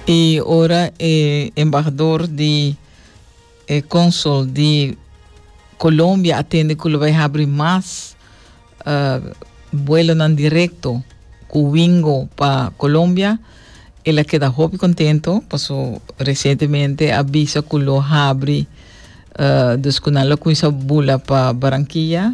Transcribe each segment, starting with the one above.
Y ora e embahador di e consul di Colombia a tende cu lo bay habri mas uh, vuelonan directo cu Wingo pa Colombia, el a keda hopi contento, paso recientemente a bisa cu lo habri, uh, dus cu nan lo cuminsa bula pa Barranquilla.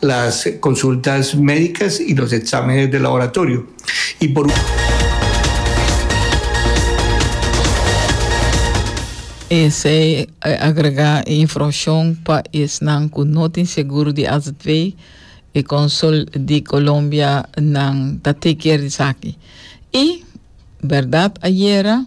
las consultas médicas y los exámenes de laboratorio y por. Esey a agrega e informacion pa esnan cu no tin segur di azv. E consul di Colombia nan ta take care di esaki. Y berdad ayera.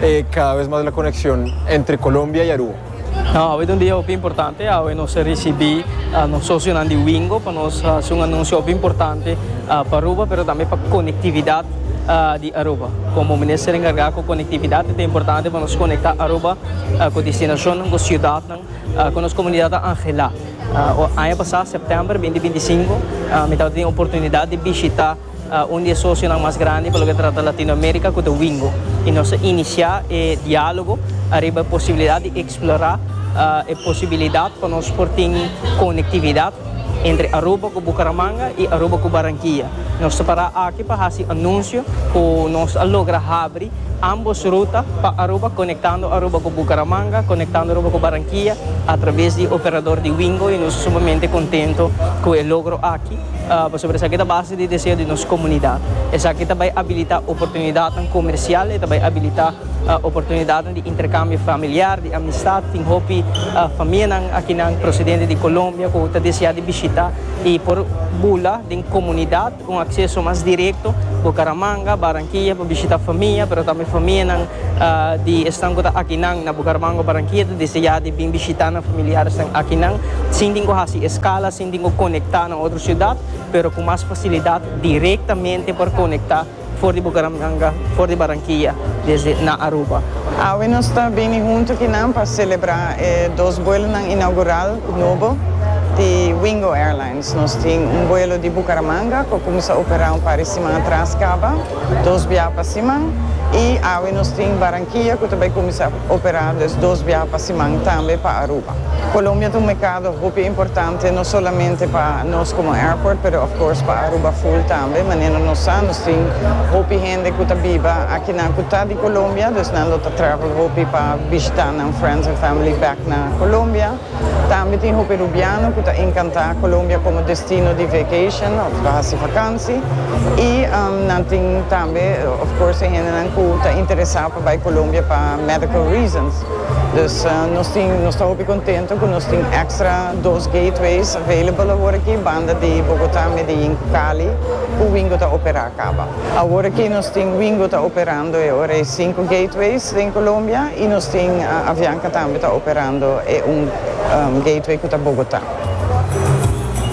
E cada vez mas la conexión entre Colombia y Aru. Awe ta un dia hopi importante, awe nos a ricibi nos socionan di Wingo pa nos haci un anuncio hopi importante pa Aruba pero tambe pa conectividad di Aruba. Como Minister encarga cu conectividad e ta importante pa nos conecta Aruba cu destinacionnan, cu ciudadnan, cu nos comunidad ta angela. Aña pasa, september binti binti singko, mi tabata tin oportunidad di bishita. Un di e sosionan mas grandi pa loke ta trata Latinoamerika ku ta Wingo i nos a inisiá e diálogo ariba e posibilidat di eksplorá e posibilidat pa nos por tin konektividat entre Aruba ku Bukaramanga i Aruba ku Barankia. Nos ta pará aki pa hasi anunsio ku nos a logra habri ámbos ruta pa Aruba, konektando Aruba ku Bukaramanga, konektando Aruba ku Barankia atraves di operador di Wingo i nos ta sumamente kontento ku e logro aki. Pasobra esaki ta base di deseo di nos komunidat. Esaki ta bai abilitá oportunidatnan komersial, e ta bai abilitá oportunidatnan di interkambio familiar, di amistat. Tin hopi famianan akinan prosedente di Kolombia ku ta deseá di bishitá i por bula den komunidat un akseso mas direkto Bucaramanga, Barranquilla pa bishitá famia, pero tambe famianan di esnan ku ta akinan na Bucaramanga o Barranquilla ta deseá di bin bishitá nan familiaresnan akinan sin tin ku hasi eskala. Tin ku konektá na otro siudat, pero ku mas fasilidat direktamente por konektá for di Bucaramanga, for di Barranquilla, desde na Aruba. Awe nos ta bini huntu ku nan pa selebrá e dos buelonan inaugural ku nobo di Wingo Airlines. Nos tin un buelo di Bucaramanga ku a kuminsá operá un par di siman atras kaba, dos biaha pa siman, i awe nos tin Barranquilla ku ta bai kuminsá. Operando es dos biaha pa siman tambe pa Aruba. Colombia ta un mercado hopi importante no solamente pa nos como airport pero of course pa Aruba full tambe manera nos sa nos tin hopi hende cu ta biba akinan cu ta di Colombia, dus nan lo ta travel hopi pa bishita nan friends and family back na Colombia. Tambe tin hopi rubiano cu ta encanta Colombia como destino di vacation of pa haci vakantie y nan tin tambe of course e hendenan cu ta interesa pa bay Colombia pa medical reasons. Dus nos tin nos ta hopi contento cu nos tin extra dos gateways available awor aki banda di Bogota, Medellin cu Cali cu Wingo ta opera caba. Awor aki nos tin Wingo ta operando e ora e sinku gateways den Colombia y nos tin Avianca tambe ta operando e un gateway cu ta Bogota.